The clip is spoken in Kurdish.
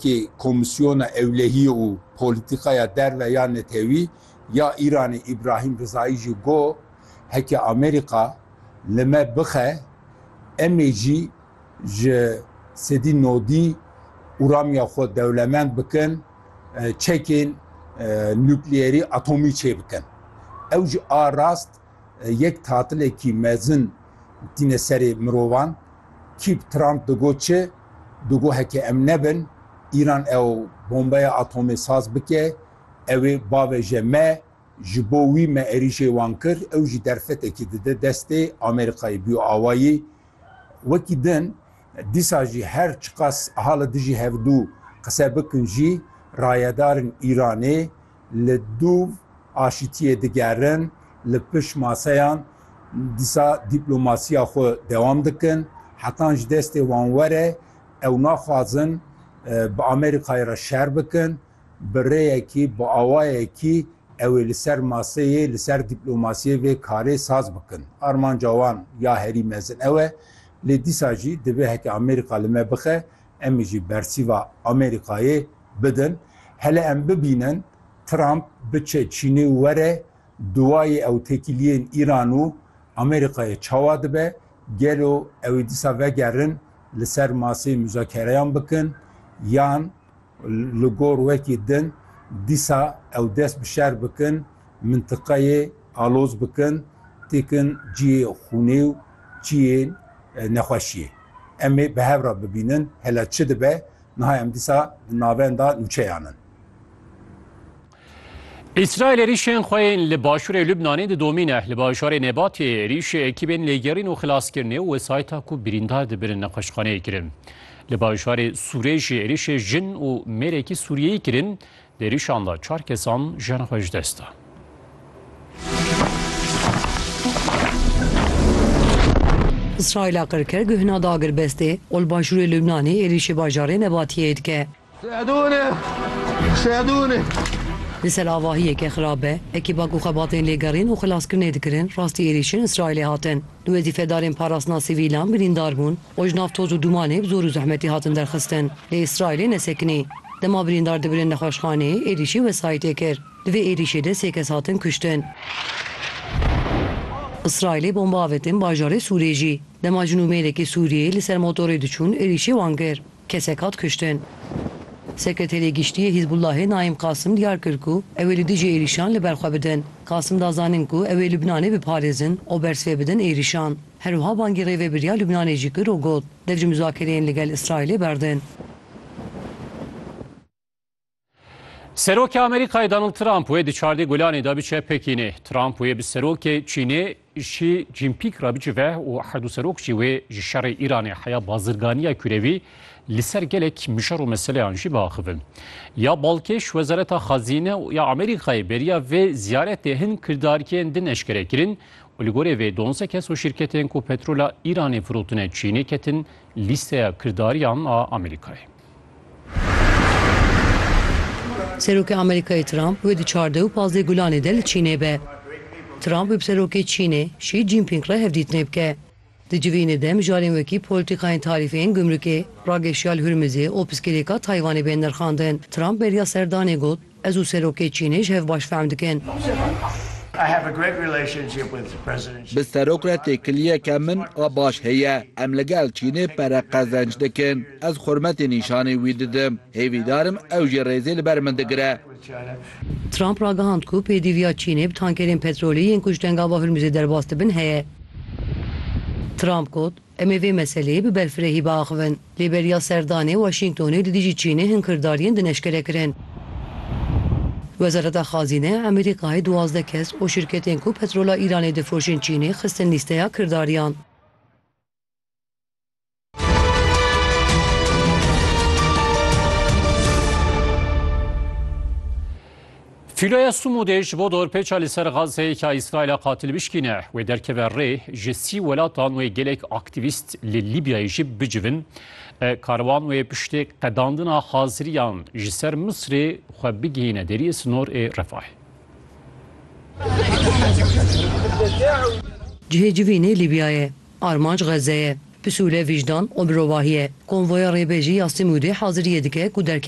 Kê Komîsyona Ewlehiyê û Polîtîkaya Derve ya Netewî ya Îranê Îbrahîm Rizayî jî got, Heke Amerîka li me bixe, em ê jî ji sedî nodî uramiya xwe dewlemend bikin, çekên nukleyerî atomî çê bikin. Ew ji a rast yek tatilekî mezin tîne serê mirovan. Kîp Trump digot çi? Bi gohekê em nebin, Îran ew bombeya atomê saz bike, ew ê bavêje me, ji bo wî me êrîşê wan kir, ew jî derfetekî dide destê Amerîkayê bûye awayî. Wekî din, dîsa jî her çiqas ha li dijî hevdu qise bikin jî, rayedarên Îranê, Li dûv aşîtiyê digerin, li pişt maseyan dîsa dîplomasiya xwe dewam dikin. Hetan ji destê wan were, ew naxwazin bi Amerîkayê re şer bikin. Bi rêyekî, bi awayekî ew ê li ser maseyê, li ser dîplomasiyê vê karê saz bikin. Armanca wan ya herî mezin ew e. Lê dîsa jî divê heke Amerîka li me bixe, em jî bersîva Amerîkayê bidin, hele em bibînin Trump biçe Çînê û were duwayê ew têkiliyên Îran û Amerîkayê çawa dibe, gelo ew ê dîsa vegerin li ser maseyê muzakereyan bikin yan li gor wekî din dîsa ew dest bi şer bikin, mintiqeyê aloz bikin, têkin ciyê xûnê û ciyê nexweşiyê. Em ê bi hev re bibînin hele çi dibe. Niha em dîsa di navenda nûçeyan in. Îsraîl êrîşên xwe yên li başûrê Lubnanê didomîne. Li bajarê Nebatiyê êrîşê ekîbên lêgerîn û xilaskirinê û wesayîta ku birîndar dibin li nexweşxaneyê kirin. Li bajarê Sûrê jî êrîşê jin û mêrekî Sûriyeyî kirin, Di êrişan de çar kesan jiyan xwe ji dest dan. Îsraîla qir kir guhna da girbestê û li başûrê Lubnanê êrîşî bajarê Nebatiyeyê dike. Li ser avahiyeke xirab be ekîba ku xebatên lêgerîn û xilaskirinê dikirin rastî êrîşên Îsraîlê hatin. Du wezîfedarên parastina sivîlan birîndar bûn û ji nav toz û dûmanê bi zor û zehmetî hatin derxistin. Lê Îsraîlê nesekinî. Dema birîndar dibirin nexweşxaneyê êrîşî wesayîtê kir. Di vê êrîşê de sê kes hatin kuştin. Îsraîlê bomba avêtin bajarê Sûrê jî. Dema jinû mêrekî Sûriyeyê li ser motorê diçûn êrîşê wan kir. Kesek hat kuştin. Sekreterê Giştî yê Hîzbûllahê Naîm Qasim diyar kir ku ew ê li dijî êrîşan li ber xwe bidin. Qasim da zanin ku ew ê Lubnanê biparêzin û bersivê bidin êrîşan. Her wiha bangî rêvebiriya Lubnanê jî kir û got, Dev ji muzakereyên li gel Îsraîlê berdin. Serokê Amerîkayê Donald Trump wê di çardê gulanê de biçe Pekînê. Trump wê bi serokê Çînê Xi Jinpîng re bicive û her du serok jî wê ji şerê Îranê heya bazirganiya kurewî li ser gelek mijar û meseleyan jî biaxivin. Ya balkêş Wezareta Xezîne ya Amerîkayê beriya vê ziyaretê hin kirdarkên din eşkere kirin û li gorê vê donze kes û şîrketên ku petrola Îranê firotine Çînê ketin lîsteya kirdariyan a Amerîkayê. Serokê Amerîkayê Trump wê di çardeh û pazdeh Gulanê de li Çînê be. Trump wê bi Serokê Çînê Şî Cînpîng re hevdîtinê bike. Di civînê de mijarên wekî polîtîkayên tarîfê yên gumrukê, rageşiya li Hurmizê û piskirêka Taywanê bên nirxandin. Trump beriya serdanê got. Ez û Serokê Çînê ji hev baş fehm dikin. Bi Serok re têkiliyeke min a baş heye. Em li gel Çînê pere qezenc dikin. Ez xurmetê nîşanî wî didim. Hêvîdar im ew jî rêzê li ber min digire. Trump ragihand ku pêdîviya Çînê bi tankerên petrolî yên ku ji tengava Hurmuzê derbas dibin heye. Trump got. Em ê vê meseleyê bi berfirehî biaxivin. Lê beriya serdanê Waşîngtonê li dijî Çînê hin kirdariyên din eşkere kirin. Wezareta Xazîne ya Amerîkayê duwazdeh kes û şirketên ku petrola Îranê difiroşin Çînê xistin lîsteya kirdariyan. Fîloya Sumûdê ji bo dorpêça li ser Gazeyê ka Îsraîla qatil bişkîne wê derkeve rê, ji sî welatan wê gelek aktîvîst li Lîbyayê jî bicivin. Karwan wê piştê qedandina haziriyan ji ser Misrê xwe bigihîne deriyê sinor ê Refahê. Cihê civînê Lîbya ye, armanc Xeze ye. Pisûle, vîjdan û mirovahî ye. Konvoya rêbêjî ya Simûdê haziriyê dike ku derkeve.